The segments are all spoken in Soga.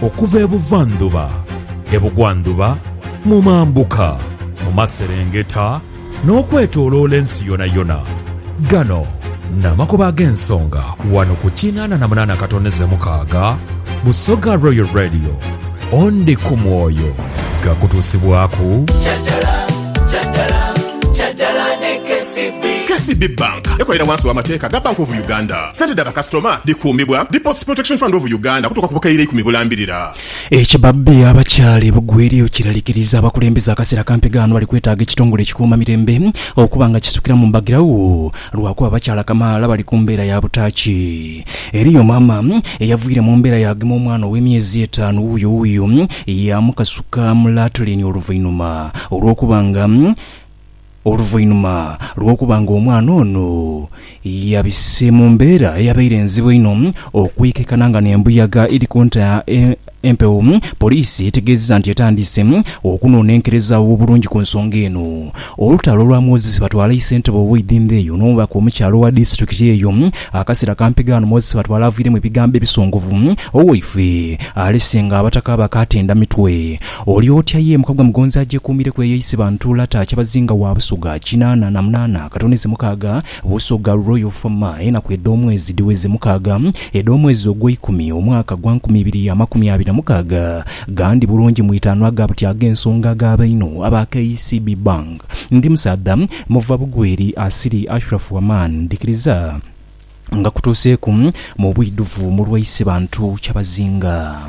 Okuva e buvandhuba, e bugwandhuba, mu mambuka, mu maserengeta, n'okwetooloola ensi yonayona. Gano n'amakubo ag'ensonga wano ku kinaana na munaana katoneze mukaaga Busoga Royal Radio. Ondi ku mwoyo gakutuusibwaku. KCB Bank ekolera wansi w'amateeka ga Bank of Uganda. Sente dha bakasitoma dhikuumibwa Deposit Protection Fund of Uganda okutuuka ku bukaire eikumi bulambirira. Ekibabbi abakyali bugwiryo kiralikiriza abakulembeze akaseera kampi ghano bali kwetaaga ekitongole ekikuuma mirembe okuba nga kisukiramu mbagiragho lwakuba abakyala kamaala bali ku mbeera ya butaaki. Eriyo maama eyavwire mu mbeera yaagema omwana ow'emyezi etaanu wuuyo wuuyo yaamukasuka mu latrine oluvainhuma olw'okuba nga Oluvainhuma lw'okuba nga omwana ono yabise mu mbeera eyabaire enzibu einho okwikekana nga n'embuyaga eri kunta empewo, poliisi etegeezezza nti etandise okunonenkereza obulungi ku nsonga eno. Olutalo olwamwozese batwala isentebe ow'eidhimba eyo n'omubaka omukyala owa disitulikiti eyo akaseera kampi ghano Moses Batwala aviiremu ebigambo ebisongovu, Owaifee alese nga abataka bakatenda mitwe Oli otya ye muka gwa Mugonzi agyekuumireku eyo eisiba Ntuula taa Kyabazinga wa Busoga kinaana na munaana Katone ze mukaaga Busoga Royal Fama Enaku edh'omwezi dhiweze mukaaga Edh'omwezi ogweikumi omwaka gwa nkumi ibiri amakumi abiri na mukaaga Gandi bulungi mu itaanu aga buti ag'ensonga aga baino aba KCB Bank Ndi musaadha muva bugweri asiri Ashraf Aman Ndhikiriza nga kutuuseeku mu bwidhuvu mu lwaise bantu kyabazinga.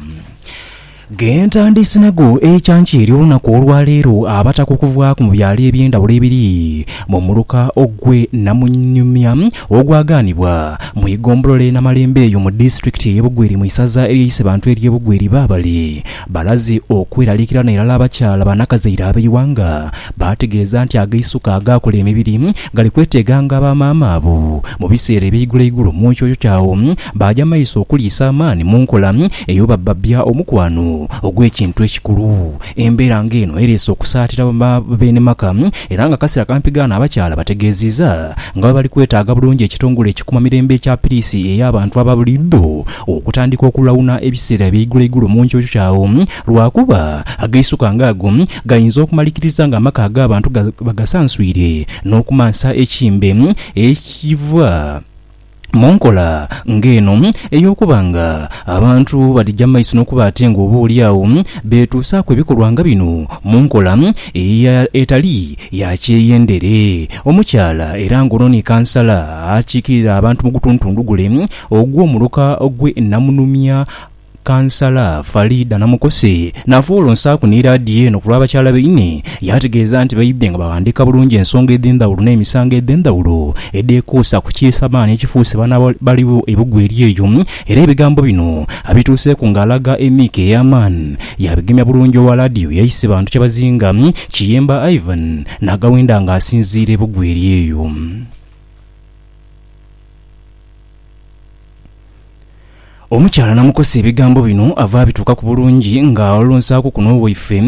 Ghentandiise nago ekyankya ery'olunaku olwaleero abataka okuvaaku mu byalo eby'endhawulo ebiri mu muluka ogwe Namunyumya ogwagaanibwa mu igombolola e Namalembe eyo mu disitulikiti eye Bugweri mu isaza eryaise bantu erye Bugweri baabale Balaze okweraliikirana irala abakyala banakazaire ab'eighanga, baategeeza nti ag'eisuka agaakola emibiri gali kweteeganga aba maama abo mu biseera eby'eiguloigulo mu nkyo kya agho baaja maiso okuliisa amaani mu nkola ey'obabbabya omukwano ogw'ekintu ekikulu. Embeera ng'eno ereese okusaatira ba beene maka era ng'akaseera kampi ghaano abakyala bategeeziiza nga bwe bali kwetaaga bulungi ekitongole ekikuuma mirembe ekya piriisi ey'abantu aba buliidho okutandika okulawuna ebiseera eby'eigulo eigulo mu nkyokyo agho, lwa kuba agaisuka nga ago gainza okumalikiriza nga amaka ag'abantu bagasanswire n'okumansa ekimbe ekiva mu nkola nga eno ey'okuba nga abantu badhija mu maiso n'okuba ate nga oba oli agho beetuusaaku ebikolwa nga bino mu nkola etali ya kyeyendere. Omukyala era nga ono ni kansala akiikirira abantu mu gutuntundu gule, Ogwo muluka gwe namunumya Kansala Faridah Namukose nafa olwo nsaaku ni laadiyo eno ku lwa bakyala baine yaategeeza nti baidhye nga baghandiika bulungi ensonga edhendhawulo n'emisango edhendhawulo edhekuusa ku kiisamaani ekifuuse baana baligho e Bugweri eyo era ebigambo bino abituuseeku nga alaga emiiko ey'amaani yaabigemya bulungi owa laadiyo yaise bantu kyabazinga Kiyemba Ivan naagawenda nga asinziira e Bugweri eyo. Omukyala namukosa ebigambo bino ava abituukaku bulungi nga olunsaaku kuno waife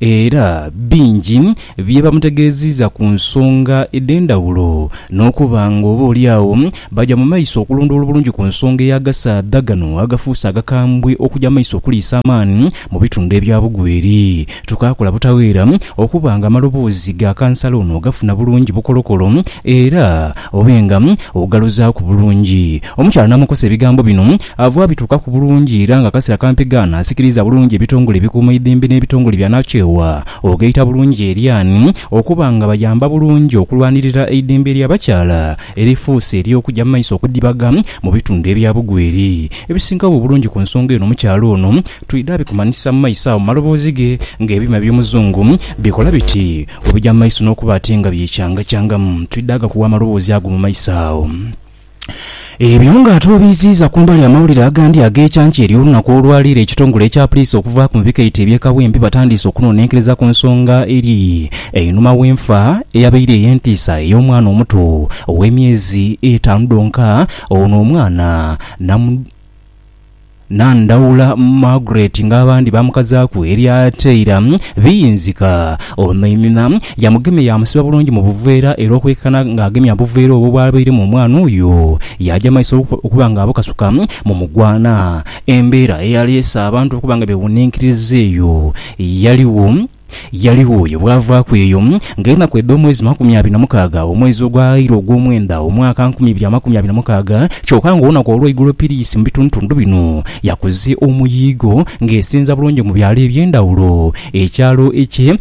era bingi bye bamutegeeziiza ku nsonga edh'endhawulo n'okuba nga oba oli agho baja mu maiso okulondoola obulungi ku nsonga ey'agasaadha gano agafuuse agakambwe okuja mu maiso okuliisa amaani mu bitundhu ebya Bugweri. Tukaakola butaweera okuba nga amaloboozi ga kansala ono ogafuna bulungi bukolokolo era obe nga ogaluzaaku bulungi. Omukyala n'amukosa ebigambo bino ava abituukaku bulungi era nga akasera kampi gaana asikiriza bulungi ebitongole ebikuuma eidembe n'ebitongole byanakyewa ogaita bulungi eryaani okuba nga bayamba bulungi okulwanirira eidembe ly'abakyala erifuuse ery'okugya mu maiso okudhibaga mu bitundu ebya Bugweri ebisingawo obulungi ku nsonga eno omukyala ono Twidha bikumanhisa mu maiso agho mu maloboozi ge, ng'ebyuma eby'omuzungu bikola biti bwe bija mu maiso n'okuba ati nga byecangachangamu. Twidha ghakuwa amaloboozi ago mu maiso agho. Ebyo nga ate obiiziiza ku mbali amawulire agandi ag'ekyankya ery'olunaku olwa leero ekitongole ekya puliisi okuvaaku mu bikaito eby'e Kawempe batandiise okunonenkereza ku nsonga eri einhuma w'enfa eyabaire ey'entiisa ey'omwana omuto ow'emyezi etaanu dhonka ono omwana namu Nandhaula Margaret nga abandi baamukazaaku erya Taylor. Biyinzika ono inhina yamugema yaamusiba bulungi mu buveera era okwekana ng'agemya obuveera obwo bw'abairemu omwana oyo, yaaja mu maiso okuba ng'abukasuka mu mugwana. Embeera eyaleese abantu okuba nga beewuninkiriza eyo yaligho. Yaligho oyo bwavaaku eyo, nga enaku edh'omwezi makumi abiri na mukaaga, omwezi ogwaghaire ogw'omwenda, omwaka nkumi ibiri amakumi abiri na mukaaga, kyoka nga olunaku olw'eigulo piriisi mu bitundutundu bino yakoze omuyiigo ng'esinza bulungi mu byalo eby'endhawulo. Ekyalo eky'e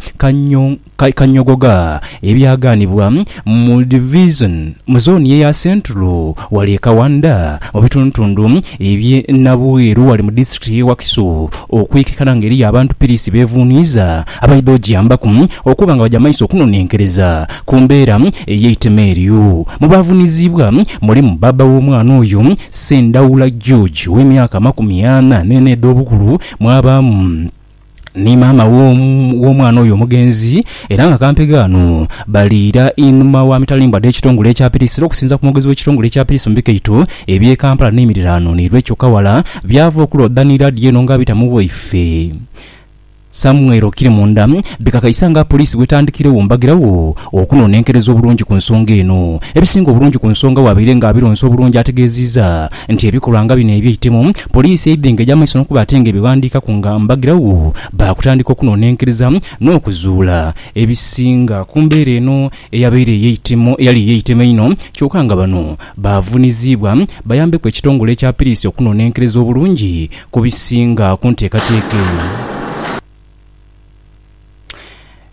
Kanyogoga ebyagaanibwa. Mu divizoni, mu zooni eya Central, ghali e Kawanda mu bitundutundu eby'e Nabweru ghali mu disitulikiti y'e Wakiso okwekikana nga eriyo abantu piriisi bevuuniiza abaidha ogyambaku okuba nga bagya maiso okunonenkereza ku mbeera ey'eitema eryo. Mu baavuniziibwa mulimu bbaabba w'omwana oyo, Ssendaula George ow'emyaka amakumi ana n'ena edh'obukulu mwabaamu. ni maama w'omwana oyo omugenzi era nga kampegho ghano bali ira inhuma wa mitalimbwa dh'ekitongole ekya Piris era okusinza ku mwogezi w'ekitongole ekya Piris mu bikaito eby'e Kampala n'emiriraano ni Recho Kawala byava okulooda ni laadiyo eno nga abita mu waife Samuel Okirimunda bikakaisa nga Poliisi bw'etandikiregho mbagirawo okunonenkereza obulungi ku nsonga eno. Ebisinga obulungi ku nsonga wabaire nga Abironsa obulungi ategeziiza nti ebikolwa nga bino eby'eitemu Poliisi eidha engeja amaiso n'okuba ate nga ebighandiikaku nga mbagirawo baakutandika okunonenkeriza n'okuzuula ebisinga ku mbeera eno eyabaire ey'eitemo eyali ey'eitema einho kyoka nga bano baavuniziibwa bayambeku ekitongole ekya Piriisi okunonenkereza obulungi ku bisinga ku nteekateeka eno.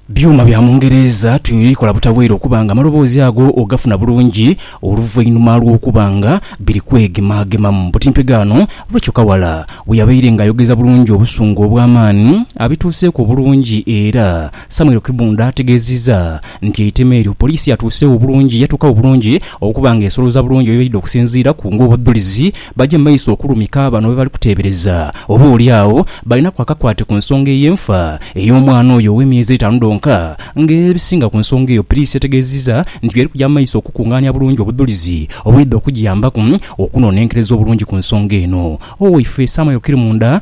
Byuma bya mu Ngereeza tubikola butabweire okuba nga amaloboozi ago ogafuna bulungi oluvainhuma lw'okuba nga biri kwegemagemamu. Butimpe ghaano, Rachel Kawala bwe yabaire nga ayogeza bulungi obusungu obw'amaani abituuseeku obulungi era Samuel Kibunda ategeezizza nti eitema eryo poliisi yatuuseegho bulungi yatuuka wo bulungi okuba nga esolooza bulungi by'ebaidde okusinziiraku ng'obudhulizi Baje mu maiso okulumika abo bano bebali kuteebereza oba oli agho balinaku akakwate ku nsonga ey'enfa ey'omwana oyo ow'emyezi etaanu dhonka. Nga era ebisinga ku nsonga eyo Piriisi yategeezizza nti by'eri kuja mu maiso okukungaania bulungi obudhulizi obuliidha okugiyambaku okunonenkereza obulungi ku nsonga eno. Oweifeesi Amayo Kirimunda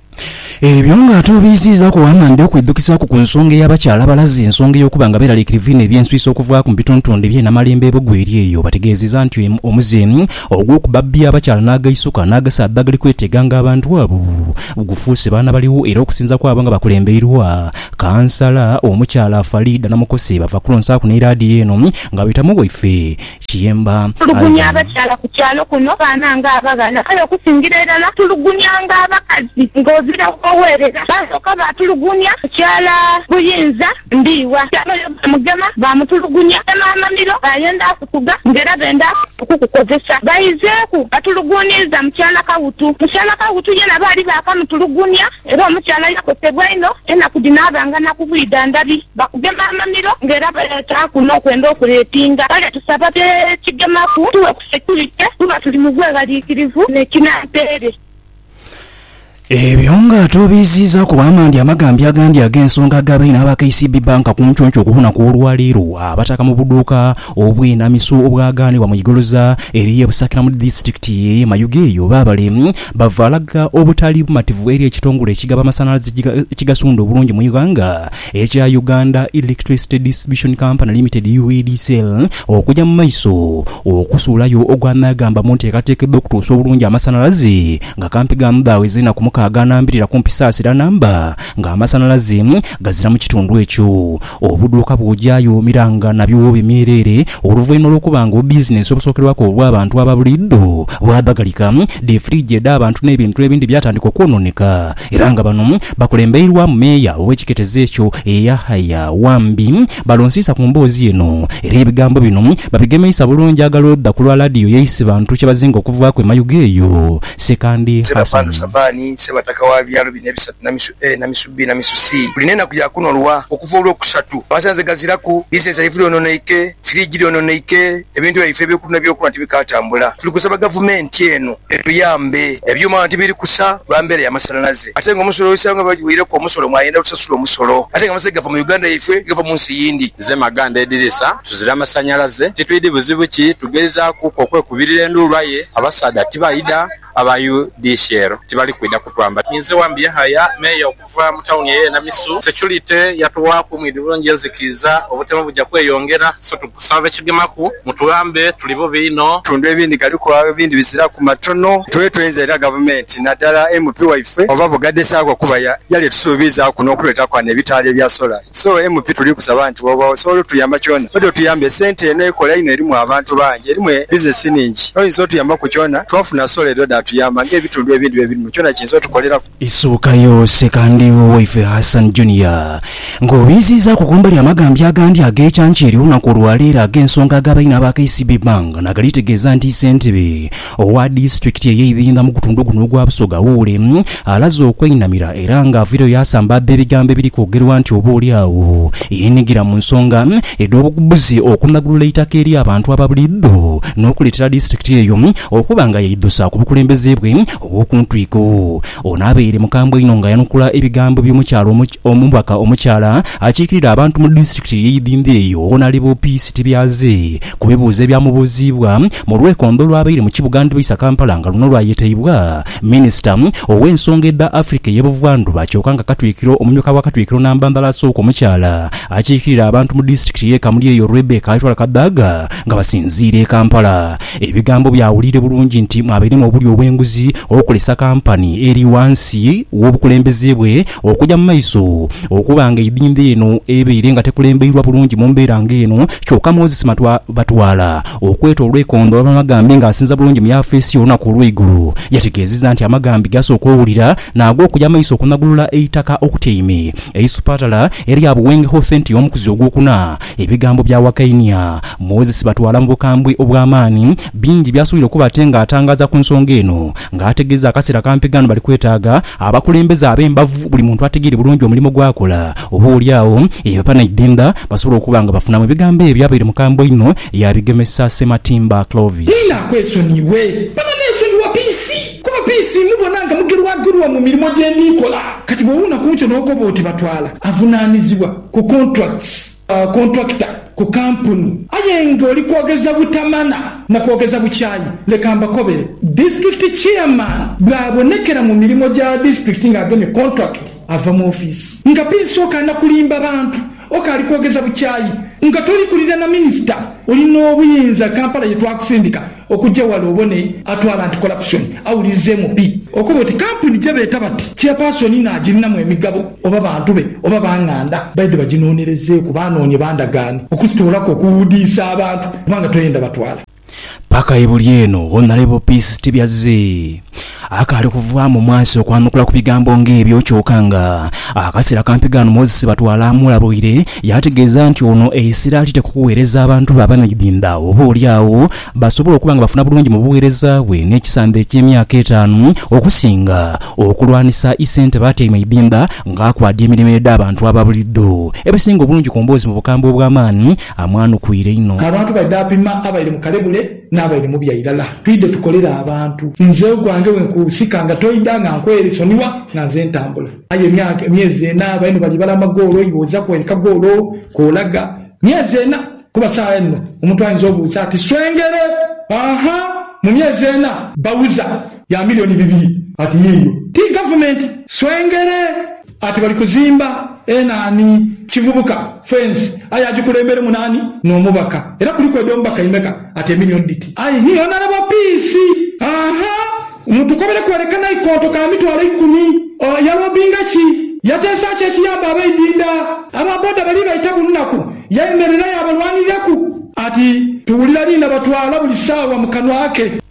Ebyo ng'ate obiiziizaaku waama ndidha okwidhukisaaku ku nsonga ey'abakyala abalazi ensonga ey'okuba nga beeraliikirivu inho eby'enswisa okuvaaku mu bitontoonde bye Namalembo e Bugweri eyo. Obategeezeza nti omuze ogw'okubabbya abakyala n'agaisuka n'agasaadha agali kweteeganga abantu abo gufuuse baana baligho era okusinza kwabo nga bakulembeirwa Kansala omukyala Faridah Namukose bava kulonsaaku n'eraadiyo eno nga beeta mu waife Kiyemba, Tulugunya Ivan. abakyala ku kyalo kuno baana nga abaghala. Kale okusingira irala tulugunya nga abakazi nga ozira kugherera. Baasooka baatulugunya ku kyala Buyinza Ndhiwa. Kyaloyo baamugema baamutulugunya ne Maamamiro baayenda kutuga nga era benda okukukozesa. Baizeeku batuluguuniiza mukyala Kawutu. Mukyala Kawutu yena baali baakamutulugunya. Era omukyala yakosebwa inho, enaku dhino aba nga na kubwidha ndhabi. Bakugema amamiro nga era baleetaaku n'okwenda okureepinga. Kale tusaba be kigemaku tughe ku securite kuba tuli mu bweghaliikirivu ne kinampeere. Ebyo nga ate obiiziizaaku bw'amandhi amagambi agandi ag'ensonga ag'abaine aba KCB Bank ku nconco ku lunaku olwa leero abataka mu buduuka obw'enamiso obwagaanibwa mu igoloza eriyo e Busakira mu disiturikiti y'e Mayuge eyo baabale Bava alaga obutali bumativu eri ekitongole ekigaba amasanhalaze ekigasunda obulungi mu ighanga ekya Uganda Electricity Distribution Company Limited, UEDCL, okuja mu maiso okusuulayo ogwa nagamba mu nteekateeka edh'okutuusa obulungi amasanhalaze nga kampi gaamudhaaweza enaku mukaaga anambirira kumpi saa siraanamba ng'amasanhalaze gazira mu kitundu ekyo. Obudhuuka bw'oja yoomiranga nabyo w'obimiira ere, oluvainhuma lw'okuba nga obubizinensi obusookerwaku obw'abantu aba buliidho bwadhagalika, dhi firiigi edh'abantu n'ebintu ebindi byatandika okwonooneka era nga bano bakulembeirwamu meeya ow'ekiketezo ekyo eyahaya Wambi balonsiisa ku mboozi eno era ebigambo bino babigemeisa bulungi aghalwa odha ku lwa laadiyo y'e Isibantu kye bazinga okuvaaku e Mayuge eyo. Ssekandi Hassan. na misu A na misu B na misu C buli n'enaku ya kuno lwa okuva Olwokusatu. Amasanhalaze gaziraku, bizinensi yaife dhoononeike, firiji dhoononeike, ebintu byaife eby'okulya n'ebyokunhwa tibikaatambula. Tuli kusaba Gavumenti eno etuyambe. Ebyuma ghano tibiri kusa lwa mbeera ya masanhalaze ate ng'omusolo oisanga nga bwe bagiweireku omusolo mwayenda otusasula omusolo ate nga amasanhalaze gava mu Uganda yaifwe tigava mu nsi yindi. Nze Maganda Edirisa, tuzira masanhalaze titwidhi buzibu ki, tugeizaakuku okwekubirira enduulu aye abasaadha tibaidha. Aba UDCL tibali kwidha kutwamba. Ninze Wambi Yahaya, Meeya okuva mu tawuni eye Namisu. Securite yatughaku mwidhi bulungi enzikiiza, obutemu buja kweyongera so tukusaba abekigemaku mutuyambe tuli bubi inho. Ebitundu ebindi galiku agho ebindi biziraku matono. Tube twenza era gavumenti nadala MP waife oba bugadha esaagho kuba yali etusuubiizaaku n'okutuleetaku ghano ebitaala ebya solar. So MP tuli kusaba nti bwoba osobola otuyamba kyona odi otuyambe sente eno ekola inho erimu abantu bangi erimu e business ningi oyinza otuyamba ku kyona twafuna solar eri odi atuyamba nga ebitundu ebindi bebirimu kyona kiyinza otukoleraku. Esooka yoose ka ndhigho waife Hassan Junior nga obinziizaaku kumbali amagambya agandi ag'ekyankya eri olunaku olwaleero ag'ensonga aga baine aba KCB Bank nagalitegeeza nti Ssentebe Owa disitulikiti eye Ibinga mu gutundhu guno ogwa Busoga Wuule alaze okweinamira era nga avaireyo yasambaadha ebigambo ebiri kwogerwa nti oba oli agho yeenhigira mu nsonga edh'obugubuzi okunagulula eitaka eri abantu aba buliidho n'okuleetera disitulikiti eyo okuba nga yeidhusa ku bukulembeze bwe obw'okuntwiko. Ono abaire mukambwe inho nga ayanukula ebigambo by'omukyala omubaka omukyala akiikirira abantu mu disitulikiti ye Idhindho eyo Wonalebo Peace Tibyaze ku bibuuzo ebyamubuuziibwa mu lwekondho olwabaire mu kibuga Ndbaisa Kampala nga luno lwayetaibwa minisita ow'ensonga edha Africa eye Buvandhuba kyoka nga katwikiro omumyuka wa katwikiro namba ndhala asooka omukyala akiikirira abantu mu disitulikiti ye Kamuli eyo Rebecca Aitwala Kadaga nga basinziira e Kampala Ebigambo byawulire bulungi nti mwabairemu obulyo obw'enguzi okolesa kampani eri ghansi w'obukulembeze bwe okuja mu maiso. Okuba nga eidhindho eno ebaire nga tekulembeirwa bulungi mu mbeera nga eno, kyoka Moses Matwa Batwala, okweta olw'eikondo olw'amagambi nga asinza bulungi mu yafeesi y'olunaku olw'eigulo, yategeezezza nti amagambi g'asooka owulira n'ag'okuja maiso okunagulula eitaka okutyaime eisupatala erya Buwenge Health Centre y'omukuzi ogwokuna Ebigambo bya Wakainia, Moses Batwala mu bukambwe obw'amaani, bingi by'asuubira okuba ate ng'atangaaza ku nsonga eno ng'ategeeza akaseera kampi ghano bali kwetaaga abakulembeze ab'embavu buli muntu ategeere bulungi omulimo gw'akola oba oli agho banaidhindha basobole okuba nga bafunamu. Ebigambo ebyo abaire mukambwe einho yabigemesa Ssematimba Clovis. Inha kwesonyiwe bano nesonyiwa piisi kuba piisi mubona nga mugerwagerwa mu mirimo gye ndi nkola kati bw'owuuna ku nkyo n'okoba oti Batwala avunaanizibwa. ku contracts, contractor, ku kampuni. Aye nga oli kwogeza butamana na kwogeza bukyayi, leka mbakobere. District chairman bw'abonekera mu mirimo gya district nga agemye contract, ava mu office. Nga pinsa okaana kulimba bantu, okaali kwogeza bukyayi. Nga toli kulira na minister, oli n'obuyinza Kampala ye twakusindika Okugya ghale obone atwala nti Corruption awulirizeemu pi okuba oti kampuni gyebeeta bati Chairperson naagirinamu emigabo oba bantu be oba ba nganda baidhe baginoonerezeeku baanoonye bandagaane okuzitoolaku okuwuudiisa abantu kubanga tweyenda batwala Paka ebuli eno, Honourable Peace Tibyazzi Akaali kuvaamu mwasi okwanukula ku bigambo ng'ebyo, kyoka nga akaseera kampi ghano Moses Batwala amulabuire yaategeeza nti ono e Isiraali tekukuweereza abantu be abanaidhindha oba oli agho basobola okuba nga bafuna bulungi mu bugheereza bwe n'ekisamba eky'emyaka etaanu okusinga okulwanisa Issentebe atyaime Idhindha ng'akwadya emirimo edh'abantu aba buliidho ebisinga obulungi ku mboozi mu bukambwe obw'amaani amwanukwiire inho. Abantu baidha apima abaire mu kalebule Nabaire mubi airala. Twidhe tukolere abantu. Nze ogwange wenkusika nga toidha nga nkwesonigha nga nze ntambula. Aye emyaka, emyezi ena baino bali bala amagoolo iwe oza kwereka goolo kolaga. Myezi ena? Kuba sawa enno omuntu ayinza obuuza ati swengere aha mu myezi ena? Bawuza ya milioni bibiri ati yiiyo. Ti gavumenti swengere. Ati bali kuzimba e nani kivubuka fence aye ajikulembelemu nani nomubaka era kuliku edo mubaka imeka ati emillion dhiti aye hii honourable peace ahaa mutukobere kwereka naikonto ka mitwalo ikumi ooh yalobinga ki yateesa ki ekiyamba abaidinda aba boda bali baita bunnaku yayemerera yabalwaniriraku. Ati tuwulira lina batwala buli saawa mukanwa ke.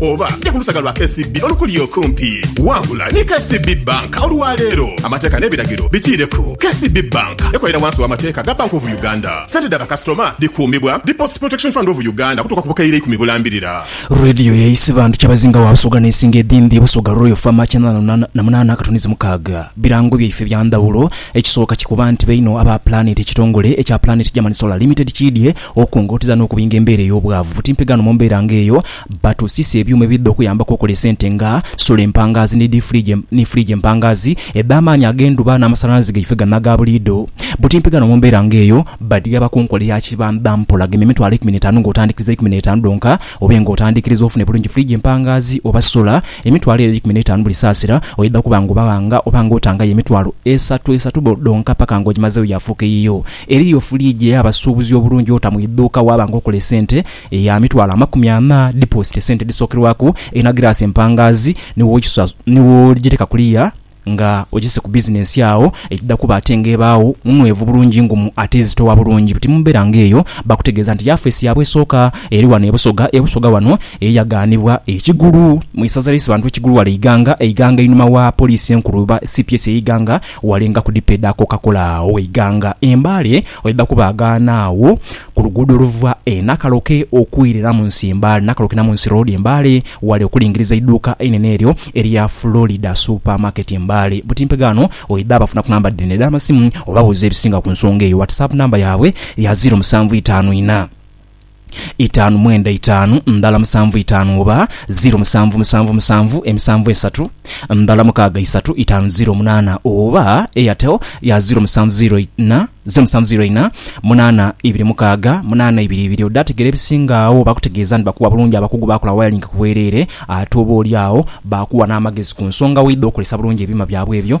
Oba ja ku lusaga lwa KCB olukuli okumpi. Wangula ni KCB Bank olwa leero. Amateeka n'ebiragiro bikiireku. KCB Bank ekolera wansi w'amateeka ga Bank of Uganda. Sente dha bakasitoma dhikuumibwa Deposit Protection Fund of Uganda okutuuka ku bukaire ikumi bulambirira. Radio ya Isiba nti Kyabazinga wa Busoga n'esinga edhindhi Busoga Royal Fama kyenda na lunaana na munaana katonizi mukaaga. Birango byaife bya ndhawulo. Ekisooka kikuba nti bainho aba Planet ekitongole ekya Planet German Solar Limited kiidhye Okungotiza n'okubinga embeera ey'obwavu buti mpi ghano mu mbeera nga eyo, batusiisa ebyuma ebidha okuyambaku okola esente nga, sola empangaazi ni diifuligi ni fuligi empangaazi edh'amaanyi ag'endhuba n'amasanhalaze gaife gano aga buliidho. Buti mpi ghano mu mbeera nga eyo, badhigaba ku nkola eya kibamba mpola gema emitwalo eikumi n'etaanu ng'otandikiriza eikumi n'etaanu dhonka obe ng'otandikiriza ofune bulungi fuligi empangaazi oba sola emitwalo ere eikumi n'etaanu buli saasira oidha kuba ng'obaghanga oba ng'otangayo emitwalo esatu esatu dhonka paka ng'ogimazeegho yaafuuka eyiyo Eriyo fuliigi ey'abasuubuzi obulungi ota mu idhuuka waaba nga okola esente eya mitwalo amakumi ana, dipoositi esente edhisookerwaku, erina giraasi empangaazi ni w'ogiteeka kuliya nga ogise ku bizinensi agho egidha kuba ate nga ebaagho nunhwevu bulungi ngumu ate ezitowa bulungi buti. Mu mbeera nga eyo bakutegeeza nti yafeesi yaabwe esooka eri ghano e Busoga. E Busoga wano ye yaghanibwa e Kigulu mu isaza ly'Isibantu e Kigulu ghale e Iganga. E Iganga einhuma wa Poliisi enkulu oba cps e Iganga Walenga ku dipo edha Coca-Cola Waiganga e Mbale oidha kubaagaana agho ku luguudo oluva e Nakaloke okwira Namunsi e Mbale, Nakaloke Namunsi Road e Mbale ghale okulingiriza eiduuka einene eryo erya Florida Super Market Mbale. Butimpe ghano oidha bafuna ku namba dhino edh'amasimu obabuuze ebisinga ku nsonga eyo. WhatsApp namba yaabwe ya ziro musanvu itaanu inha. itaanu mwenda itaanu ndala musanvu itaanu oba ziro musanvu musanvu musanvu emisanvu esatu ndala mukaaga isatu itaanu ziro munaana oba Airtel ya ziro musanvu ziro ina ziro musanvu ziro ina munaana ibiri mukaaga munaana ibiri ibiri odhategera ebisinga agho bakutegeeza nti bakuwa bulungi abakugu baakola wayalingi ku bwereere ate oba oli agho baakuwa n'amagezi ku nsonga weidha okozesa bulungi ebyuma byabwe ebyo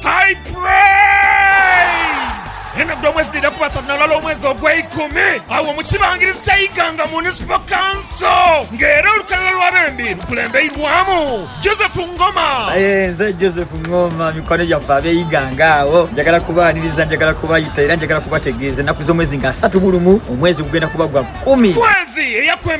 High Praise! Enadhu omwezi dhidha kuba satu na lulala omwezi ogweikumi agho mu kibangirizi kya Iganga Municipal Council nga era olukalala lwa bembi lukulembeirwamu Joseph Ngoma. Aye nze Joseph Ngoma, mikwano gyaffe ab'e Iganga agho njagala kubaaniriza, njagala kubayita era njagala kubategeeza ennaku z'omwezi nga asatu mu lumu, omwezi gugenda kuba gwa kumi. Kwezi eyakwemba.